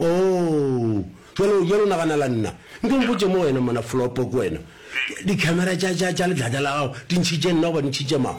Oo, bjalo, bjalo naganela nna. Nke o mpotše mo wena, mona Flopo, ke wena. Dikhamera tša, tša, tša letlata la gago di ntšhitše nna goba di ntšhitše mang?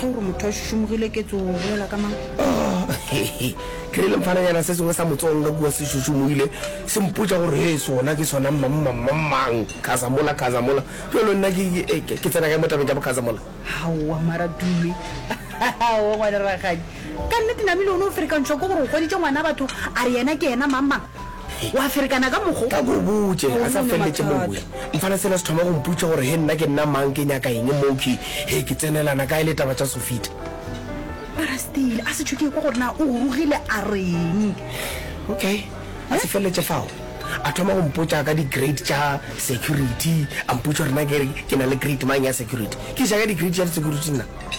ge gore motho a šušumogile ke tso bolela ka mang ke re lemfananyana se sengwe sa motsonga kua se šušumogile se mpotša gore he sona ke sona mmammammang khazamola khazamola jalo nna ke tsena kae mo tabeng tša bokhazamola gaowa mara dume o ngwane ragadi ka nnete namile o ne o ferekantšhwa ke gore o goditše ngwana batho a re yena ke yena mamang Wa ferekana ka mokgo. Ka ko o botše, a sa feleletše mowe. Mfana sela se thoma go mputša gore he nna ke nna mang, ke nyaka eng moo, ke he ke tsenelana kae le taba tša Sofita. Parastile a se tšho ke ekwa gore na o gorogile a reng. Okay, a se feleletše fao. A thoma go mpotša ka di-grade tša security, a mputša gore na ke re ke na le grade mang ya security. Ke eja ka di-grade tša di-security nna.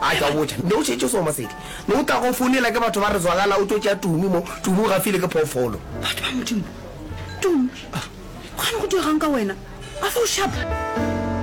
A tšwa botša, Nde o šetše soma seke ne o tla go founela ke batho ba re zwagala o tlo tšea Tumi mo. Tumi o gafile ke phoofolo. Batho ba Modimo. Tumi, go gane go diregang ka wena? A fa o šapa?